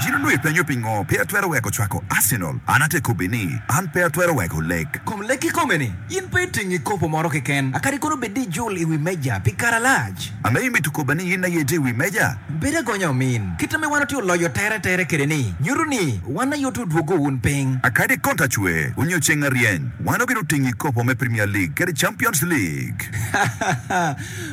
Gin onongo ipenyo pingo pe atwero weko cwako Arsenal? An ate kobbi ni, an pe atwero weko lek. Kom lek kikome ni, in pe itingi kopo moro keken, a kadi kono bed ni ijul i wi meja pi kare alac. Ame imito kobba ni in aye itye i wi meja? Bed agonya omin. Kit ame wan otye oloyo tere tere kwede ni, nyuto ni wan aye otye odwogo wun piny. A kadi kono ta cwe u nyo ceng aryeny, wan obino tingi kopo me Premier League kadi Champions League.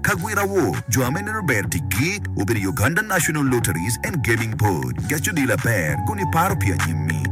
Ka gwira wo, jo ame neno ber ticgi obedo i Uganda National Lotteries and Gaming Board. Gec odii laber kun iparo pi anyimmi.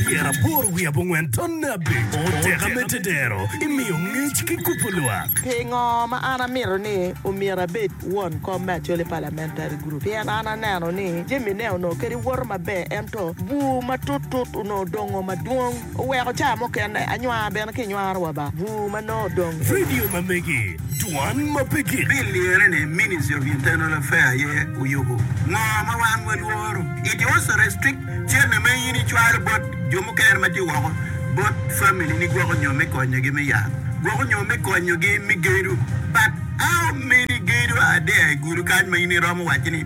Pyera aboro wiye abongwen to nabbi oteka me tedero imiyo ngec ki kubo lwak. Pingo ma an amito ni omyero abed won kom me Acholi Parliamentary Group? Pien an aneno ni jamine onongo kadi woto maber ento bur matut tut onongo dongo madwong. Oweko caa mukene anywar bene ki nywaro wa ba bur ma nongo odong eni. Vidio ma megi, Dwan ma pe gik. Bil lirre ni Ministry of Internal Affair aye oyubo ngo ma wan walworo. It also restrict cene ma in icwalo bot jo mukene ma tye woko bot family ni gwoko nyo me konyo gi me yat, gwoko nyo me konyo gi me gedo but how many gedo are there i gulu kany ma in iromo waco ni.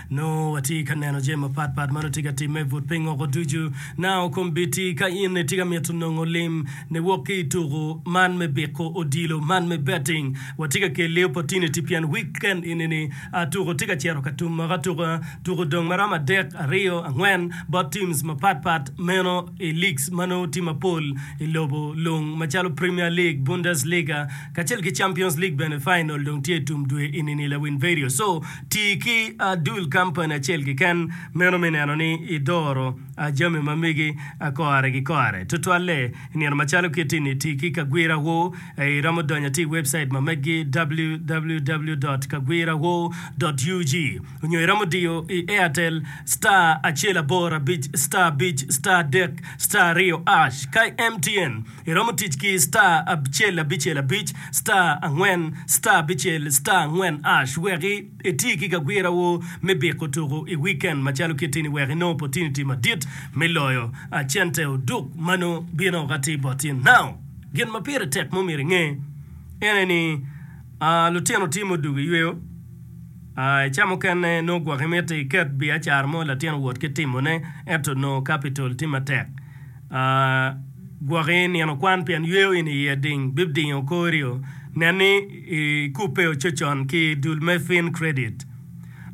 Nongo watye ka neno jami mapat pat ma nongo tye ka timme but piny woko ducu. Nao kombeddi ka in itye ka mito nongo lim ni wok ki i tuku man me biko odilo man me betting. Watye ka kelli opportunity pien weekend enini tuku tye ka cito ka tum moko atuka. Tuku odong ma romo adek, aryo, angwen bot teams mapat pat meno i leagues ma nongo tye mapol i lobo lung macalo Premier League, Bundesliga kacel ki Champions League bene final dong tye i tum dwe enini lawin vedio. So. Ti ki adul kampani acel keken meno me neno ni idoro jami ma megi kore ki kore. Tutwalle, i nino macalo kiti-ni, ti ki kagwirawu. Iromo donyo ati i webcait ma meggi, www.kagwirawu.ug, onyo iromo diyo i Airtel, star acel aboro abic, star abic, star adek, star aryo ash. Ka i MTN. Iromo tic ki star abicel abicel abic star angwen star abicel star angwen ash wek iti ki gagwirawu me biko tuku i wikend macalo kit ini wek inong opotiniti madit me loyo cente oduk ma nongo bino ka ti boti. Now, gin ma pire tek ma omyero inge en eni lutino timo oduk iyweyo i ca mukene nongo gwok imiti iket biacara mo latin owot ki timone ento nongo capital ti matek. A Gwoki nino kwan pien yweyo in iye ding bibdingo korio. Nen ni i kubbe ococon ki dul me Fin Credit.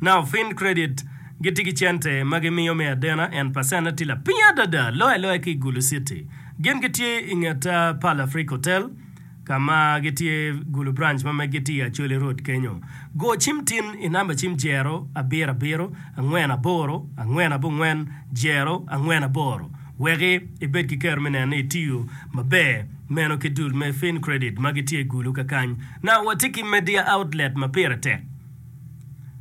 Now Fin Credit gitye ki cente ma gimiyo me adena and pacentne tye lapiny adada loyo aloya ki i Gulu City. Gin gitye i nget Pearl Afrique Hotel. ka ma gitye gulu branch ma meggi tye i Acholi Road kenyo. Go cim tin i namba cim jero abiro abiro angwen aboro angwen abongwen jero angwen aboro wek ibed ki kero me neno ni itiyo maber meno ki dul me FinCredit ma gitye gulu kakany. Na watye ki media outlet ma pire tek,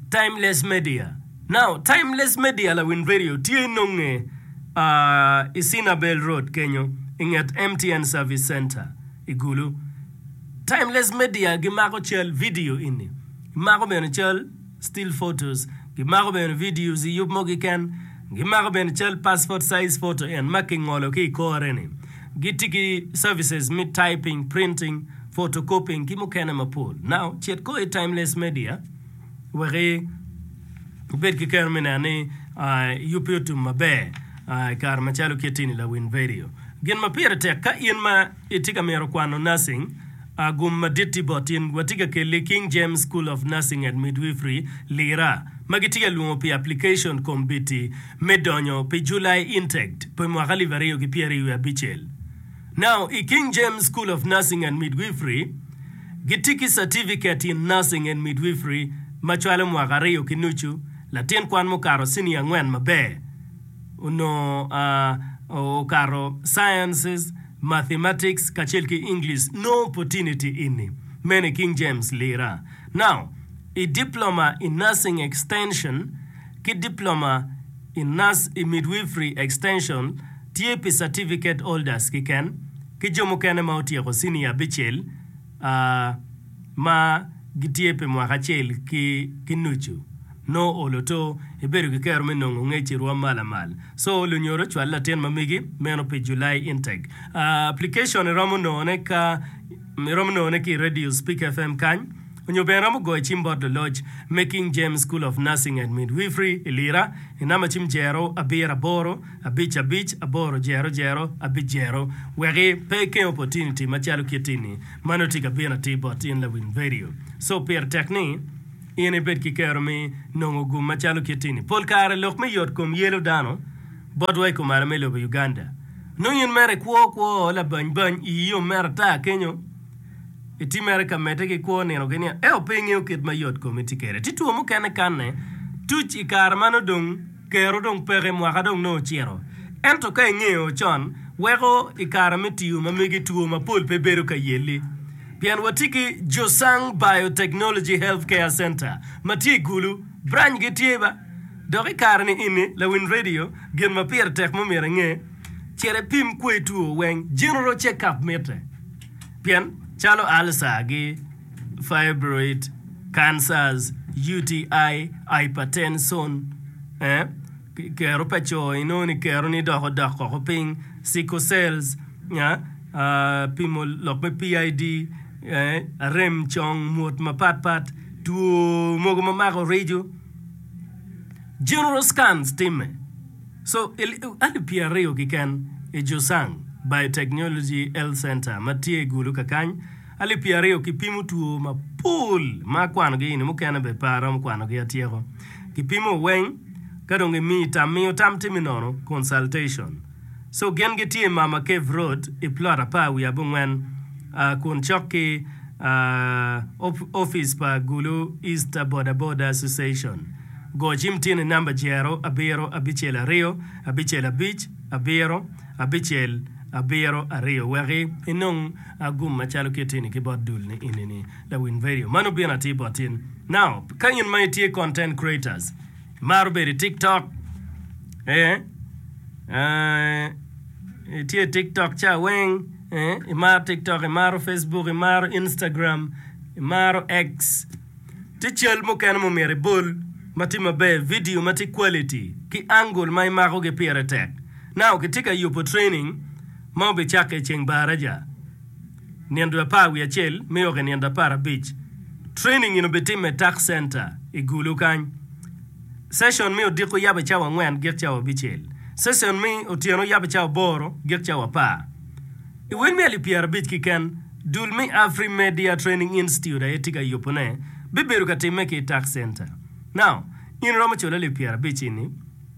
Timeless Media. Now Timeless Media lawin radio tye nonge i Cinabel Road kenyo i nget MTN Service Center i Gulu. Timeless Media gimako cal, video ini, gimako bene cal, still photos, gimako bene videos i yub mo kiken, gimako bene cal passport size photo en ma kingolo ki i kore ni. Gitye ki services me typing, printing, photocopying ki mukene mapol. Now cit ko i Timeless Media. wek ibed ki keno me neno ni yubbi otum maber i kare macalo kit ini. Lawin Vidio. Gin ma pire tek, Ka in ma itye ka mito kwano nursing, gum madit tye bot in. Watye ka kelli King James School of Nursing and Midwifery, Lira, ma gitye ka lwongo pi aplication kombiti me donyo pi July Intake pi mwaka alip aryo ki pyeraryo wiye abicel. Now, i King James School of Nursing and Midwifery, gitye ki Certificate in Nursing and Midwifery ma cwalo mwaka aryo ki nucu, latin kwan mukato ciniya angwen maber onongo okato Sciences, Mathematics kacel ki English, no opportunity ini, meno i King James lira. Now, i Diploma in Nursing Extension ki Diploma I Nurse i Midwifery Extension tye pi certificate holders kiken ki jo mukene ma otyeko cinia abicel a ma gitye pi mwaka acel ki nucu. No olo to, ibedo ki kero me nongo ngec i rwom ma lamal. So olo nyoro cwal latin ma megi meno pi July intake. Application iromo nongone ka iromo nongone ki i Radio Spik FM kany. Onyo bene iromo goyo cim bot luloc me King James School of Nursing and Midwifery i Lira i namba cim jero abiro aboro abic abic aboro jero jero abic jero weki pe ikeng opportunity macalo kitti ni ma nongo tye ka bino atir bot in lawiny vedio. So pire tek ni in ibed ki kero me nongo gum macalo kitti ni. Pol kare lok me yot kom yelo dano botwa i kumalo me lobo Uganda. Nongo in mere ikwo kwo labany bany iyi yom mere ata kenyo. Itimere ka medde ki kwo nino ki nino ento pe ingeyo kit ma yot komi tye kwede. Tye two mukene kanne tuc i kare ma nongo dong kero dong peke, mwaka dong nongo ocito. Ento ka ingeyo con weko i kare me tiyo ma megi two mapol pe bedo ka yelli. Pien watye ki Josang Biotechnology Health Care Center ma tye i Gulu, branchgi tye ba. Dok i kare ni eni, lawiny redio, gin ma pire tek ma omyero inge, cit ipim kwo i two weng, general check up mitte. Pien calo alca gi fibroid cancers, UTI, hypertension, kero pa co inongo ni kero ni dok odok koko piny, sickle cells, pimo lok me PID, rem cong, mwot mapat pat, two mogo mamako rijo. General Scans timme so i alip pyer aryo kiken i Josang Biotechnology Health Center ma tye i Gulu kakany alip pyer aryo ki pimo two mapol ma akwano gi eni mukene bed pe aromo kwano gi atyeko. Ki pimo weng ka dong i miyi tam miyo tam timi nono, consultation. Co gin gitye i Mama Cave Road i plot apar wiye abongwen kun cok ki opic pa Gulu East Boda Boda Association. Go cim tyen i namba jero abiro abicel aryo abicel abic abiro abicel abiro aryo wek inong gum macalo kit eni ki bot dul ni eni ni lawiny vedio. Mano bino atir bot in. Now, ka in ma itye content creators, Imaro bedo i tiktok ee ee itye i tiktok ca weng ee imaro tiktok imaro Facebook imaro Instagram imaro X tye cal mukene ma omyero ibol ma tye maber vidio ma tye quality ki angle ma imakogi pire tek now kitye ka yubo training ma obicakke iceng baraja Nino dwe apar wiye acel me oki nino dwe apar abic, training eni obitimme i Tax Center i Gulu kany. Session me odiko oyabbe cawa angwen gik cawa abicel. Session me otyeno oyabbe cawa aboro gik cawa apar. I wel me alip pyerabic kiken, dul me Afrimedia Training Institute aye tye ka yubu ne bibedo ka timme ki i Tax Center. Now, in iromo culo alip pyerabic ini?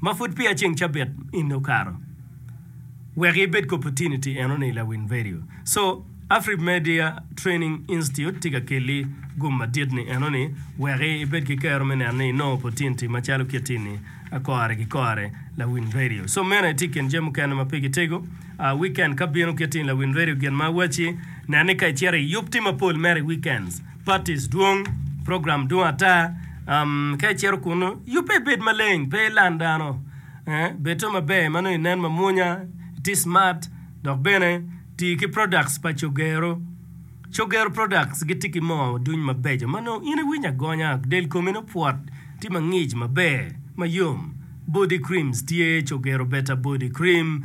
ma pud peya ceng cabit in okato wek i bed ki opportunity eno ni la win vedio so Afrib media training institute tye ka keli gum madit ni eno ni wek i bed ki kero me neno ni i nongo opportunity ma calo kiti ni a kore ki kore la win vedio so meno aye tye ikin jami mukene ma pe ki tego a weekend ka bino kiti ni la win vedio gin ma awaci nen ni ka i cito i yub ti mapol mere i weekends. Batis dwong, program dwong ata. Um, ka icito kunu, yubbe ibed maleng, pe ilan dano. Eh, bedo maber ma nongo inen mamwonya, iti smart, dok bene ti ki products pa Cogero. Cogero products giti ki moo duny mabeco ma nongo in iwinyo agonya, del komi nongo pwot, ti mangic maber, mayom. Body creams tye, Cogero Beta Body Cream.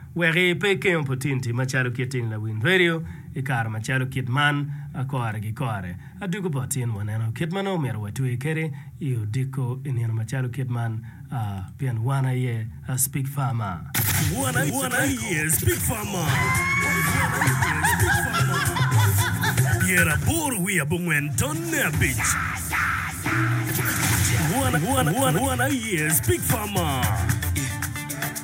Wek i pe ikeng oputiniti macalo kit in lawiny redio i kare macalo kit man, a kore gi kore, a dugo bot in waneno kit ma nongo omyero watwe kede i odiko i nino macalo kit man, a pien wan aye a Speak Farmer. Wan aye Speak Farmer. Pyera aboro wiye abongwen tonne abic. Wan aye Speak Farmer.